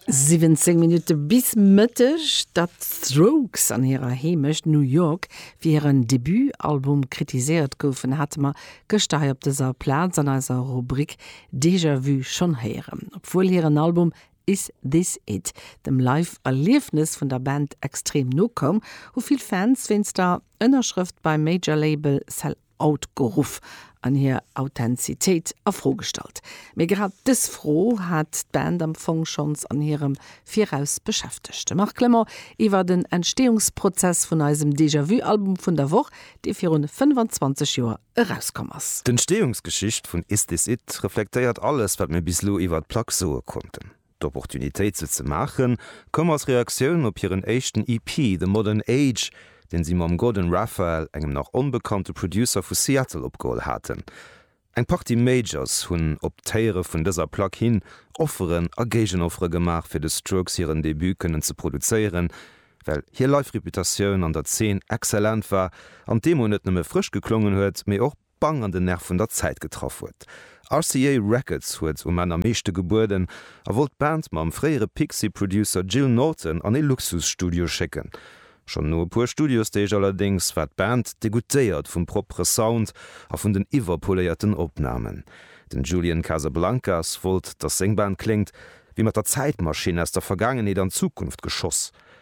17 Minutte bis Mëtteg, datt d'Strokes an hirer Heemecht New York fir hiren Debutalbum kritiséiert goufen, hate mer gëschter hei op dëser Plaz an eiser Rubrik Déjà Vu schonn héieren. Obwuel hiren Album Is This It dem Live-Erliefnes vun der Band extrem no koum, hu vill Fans wéinst der Ënnerschrëft beim Major-Label Cell Out geruff an hir Authentizitéit a Fro gestallt. Mee grad dës Fro hat d'Band am Fong schonns an hirem Viraus beschäftegt. De Marc Clement iwwer den Entsteeungsprozess vun eisem Déjà-vu-Album vun der Woch, dee virun 25 Joer erauskomm ass. D'Entsteeungsgeschicht vun Is This It? reflektéiert alles, wat mir bis lo iwwer d'Plack soe konnten. D'Opportunitéit se ze maachen, koum als Reaktioun op hiren éischten EP The Modern Age, deen si mam Gordon Raphael, engem nach onbekannte Producer vu Seattle, opgeholl haten. Eng Partie Majors hunn op d'Héiere vun dëser Plack hin Offeren a Géigenoffere gemaach, fir de Strokes hiren Debut kënnen ze produzéieren, well hir Live-Reputatioun an der Zeen exzellent war an d'Demo net nëmme frësch geklongen huet, mee och. bang an den Nerv vun der Zäit getraff huet. RCA Records huet um Enn am meeschte gebueden a wollt d'Band mam fréiere Pixies-Producer Gil Norton an ee Luxusstudio schécken. Schonn no e puer Studiosdeeg allerdéngs war d'Band degoûtéiert vum proppere Sound a vun den iwwerpoléierten Opnamen. Den Julian Casablancas wollt, datt seng Band kléngt wéi mat der Zäitmaschinn aus der Vergaangenheet an d'Zukunft geschoss.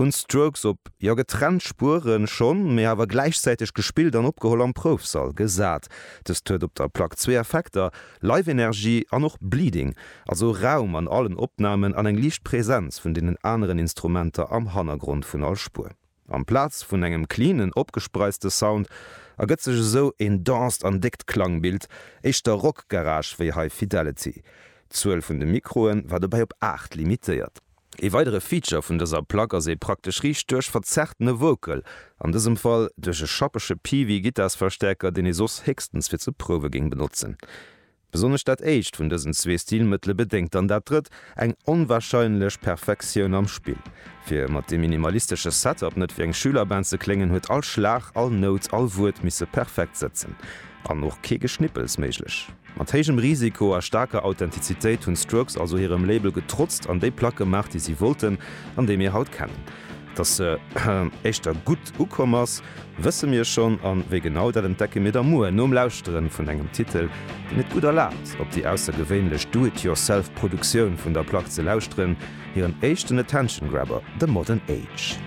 Hunn d'Strokes op, jo getrennt Spueren schonn, mee awer gläichzäiteg gespillt an opgeholl am Proufsall gesat. Dëst huet op der Plack zwee Effekter, Live-Energie an och Bleeding, also Raum an allen Opnamen an eng liicht Präsenz vun deenen aneren Instrumenter am Hannergrond vun all Spuer. Amplaz vun engem cleanen, opgespreizte Sound ergëtt sech esou een denst an déckt Klangbild, éischter Rock-Garage wéi High Fidelity. D'Zuel vun de Mikroe war dobäi op 8 limitéiert. Ee weidere Feature vun dëser Plack ass ee praktesch riicht duerch verzerrtene Vocal, an dësem Fall duerch e schappege Peavey-Gittarsverstäerker, deen ee soss héchstens fir ze prouwe géing benotzen. Besonnesch dat éischt vun dësen zwee Stilmëttele bedéngt dann dat drëtt, eng onwarscheinlech Perfektioun am Spill. Fir mat deem minimalistesche Setup net wéi eng Schülerband ze kléngen, huet all Schlag, all Nout, all Wuert misse perfekt sëtzen, an och kee Geschnippels méiglech. Mat héijem Risiko a staarker Authentizitéit hunn d'Strokes also hirem Label getrotzt an déi Plack gemaach, déi si wollten an déi mir haut kennen. Dass se éischter gutt ukomm ass, wësse mir schonn an wéi genau, dat entdecke mir da muer nom Lauschteren vun engem Titel, deen et gutt erlaabt, op déi aussergewéinlech Do-it-yourself-Produktioun vun der Plack ze lauschteren, hiren éischten Attention-Grabber, The Modern Age.